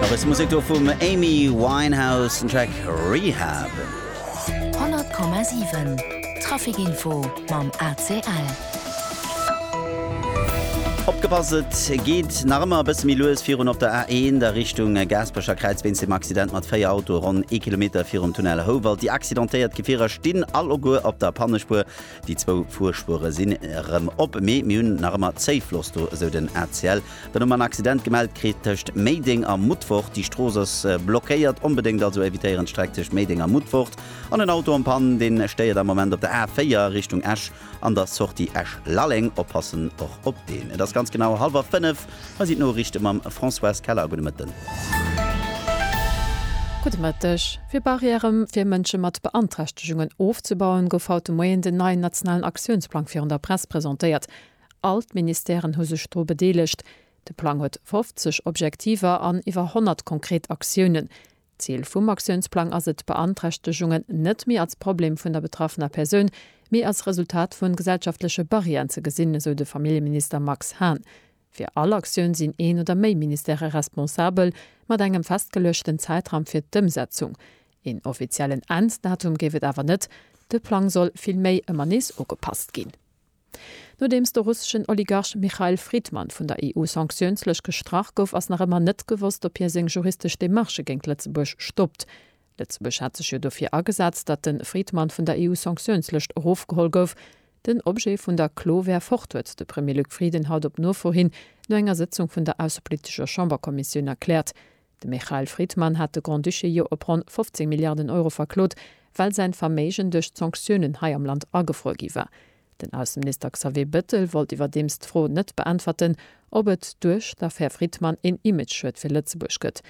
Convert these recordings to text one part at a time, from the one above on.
Nach bësse Musek do vum Amy Winehouse, den Track Rehab. 100,7 Traficinfo mam ACL. Opgepasst, et geet nach ëmmer e bësse méi lues virun op der A1 a Richtung Gaasperecherkräiz wéinst dem Accident mat 4 Autoe ronn ee Kilometer virum Tunnel Houwald. Déi accidentéiert Gefierer stinn alleguer op der Pannespuer. Déi zwou Fuerspuere sinn erëm op, mee mir hunn nach ëmmer Zéifloss do, esou den ACL. Dann hu mer en Accident gemellt kritt tëscht Méideng a Mutfort. Déi Strooss ass blockéiert. Onbedéngt also evitéieren d'Streck tëscht Méideng a Mutfort. An en Auto am Pann, dee stéiert am Moment op der A4 Richtung Esch an der Sortie Esch-Lalleng. Oppassen och op deen. Et ass ganz genau hallwer fënnef. Hei sinn d'Noriichte mam Françoise Keller. Gudde Mëtten. Gudde Mëtteg. Fir Barrièrë fir Mënsche mat Beanträchtegungen ofzebauen, gouf haut de Moien den neien nationalen Aktiounsplang virun der Press presentéiert. All d'Ministèren hu sech dru bedeelegt. De Plang huet 50 Objektiver an iwwer 100 konkret Aktiounen. D'Zil vum Aktiounsplang ass et, Beanträchtegungen net méi als Problem vun der betraffener Persoun, mee als Resultat vu gesellschaftleche Barrièren ze gesinn, esou de Familljeminister Max Hahn. Fir all Aktioun sinn een oder méi Ministèrë responsabel, mat engem festgeluechten Zäitraum fir d'Ëmsetzung. Een offiziellen Enn-Datum géif et awer net, de Plang soll villméi ëmmer nees ugepasst ginn. Nodeems de russeschen Oligarch Mikhail Fridman vun der EU Sanktiounslëscht gestrach gouf, ass nach ëmmer net gewosst, ob hie seng juristesch Demarchë géint Lëtzebuerg stoppt. Lëtzebuerg hat sech jo dofir agesat, datt de Fridman vun der EU Sanktiounslëscht erofgeholl gouf. Den Objet vun der Klo wär fort, huet de Premier Luc Frieden haut op Nofro hin no enger Sëtzung vun der aussepolitescher Chamberkommissioun erkläert. De Michael Fridman hat de Grand-Duché jo op ronn 15 Milliarden Euro verklot, well säin Verméigen duerch d'Sanktiounen hei am Land agefruer gi war. Den Ausseminister Xavier Bettel wollt iwwerdeems d'Fro net beäntwerten, ob et duerch d'Affär Fridman een Imageschued fir Lëtzebuerg gëtt.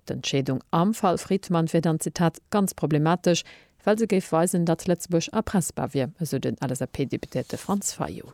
D'Entscheedung am Fall Fridman wier dann, Zitat, ganz problematesch, well se géif weisen, datt Lëtzebuerg erpressbar wier, esou den LSAP-Deputéierte Franz Fayot.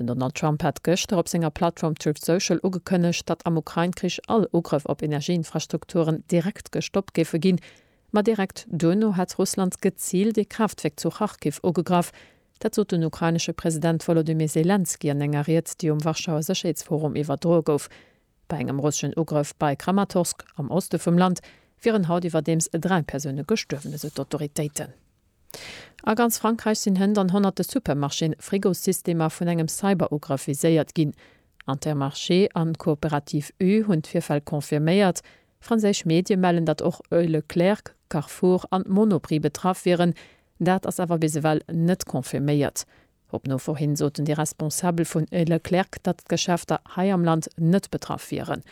Den Donald Trump hat gëschter op senger Plattform Truth Social ugekënnegt, datt am Ukrain-Krich all Ugrëff op Energieinfrastrukturen direkt gestoppt géife ginn. Ma direkt duerno hätt Russland geziilt ee Kraaftwierk zu Kharkiv ugegraff. Dat sot den ukrainesche President Wolodymyr Selenskyj an enger Ried, déi um Warschauer Sécherheetsforum iwwerdroe gouf. Bei engem russeschen Ugrëff bei Kramatorsk am Oste vum Land wieren haut iwwerdeems dräi Persoune gestuerwen, esou d'Autoritéiten. A ganz Frankräich sinn Hënt an honnerte Supermarchéen, Frigossystemer vun engem Cyberugrëff viséiert ginn. Intermarché an d'Coopérative U hunn d'Virfäll confirméiert. Franséisch Medie mellen, datt och Leclerc, Carrefour an Monoprix betraff wieren. Dat ass awer bis ewell net confirméiert. Op Nofor hin soten déi Responsabel vun Leclerc, datt d'Geschäfter hei am Land net betraff wieren.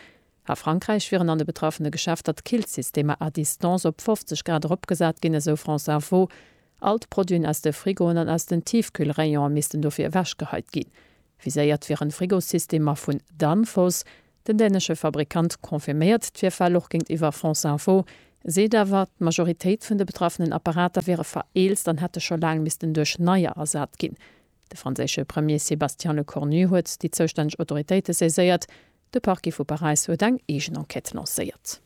A Frankräich wieren an de betraffene Geschäfter d'Killsystemer à distance op 50 Grad eropgesat ginn, esou France Info. All d'Produiten aus de Frigoen an aus den Tiefkühlrayonen missten dofir ewechgeheit ginn. Viséiert wieren Frigosystemer vun Danfoss. Den dänesche Fabrikant confirméiert d'Virfäll och géintiwwer France Info, seet awer, d'Majoritéit vun de betraffenen Apparater wiere vereelzt an hätte scho laang missten duerch neier ersat ginn. De franséische Premier Sébastien Lecornu huet déi zoustänneg Autoritéite saiséiert, De Parquet vu Paräis huet eng eegen Enquête lancéiert.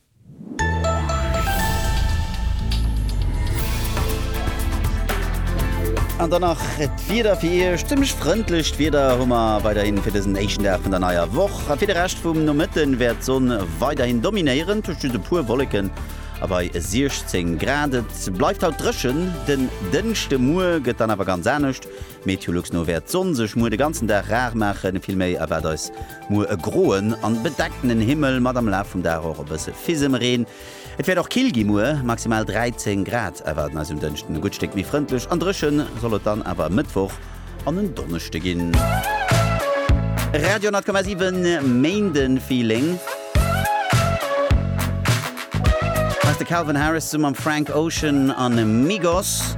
An dann nach d'Wieder fir Iech. Zimmlech frëndlecht Wieder hu mer weiderhin fir dësen éischten Dag vun der neier Woch. A fir de Rescht vum Nomëtte wäert d'Sonn weiderhin dominéieren, tuerst just e puer Wolleken a bei 16 Grad. Et bleift haut dréchen. Den Dënschdemuer gëtt dann awer ganz anescht. Meteolux no wäert d'Sonn sech muer de ganzen Dag rar maachen, vill méi erwaart eis muer e groen an bedeckten Himmel mat am Laf vum Dag och e bësse Fisemreen. Et wäert och kill gi muer, maximal 13 Grad erwaarden eis um Dënschden. E gutt Stéck méi frëndlech an dréchen soll et dann awer e Mëttwoch an en Donneschde ginn. Radio 10,7 Méindenfeeling. Hei ass de Calvin Harris zesumme mam Frank Ocean an Migos.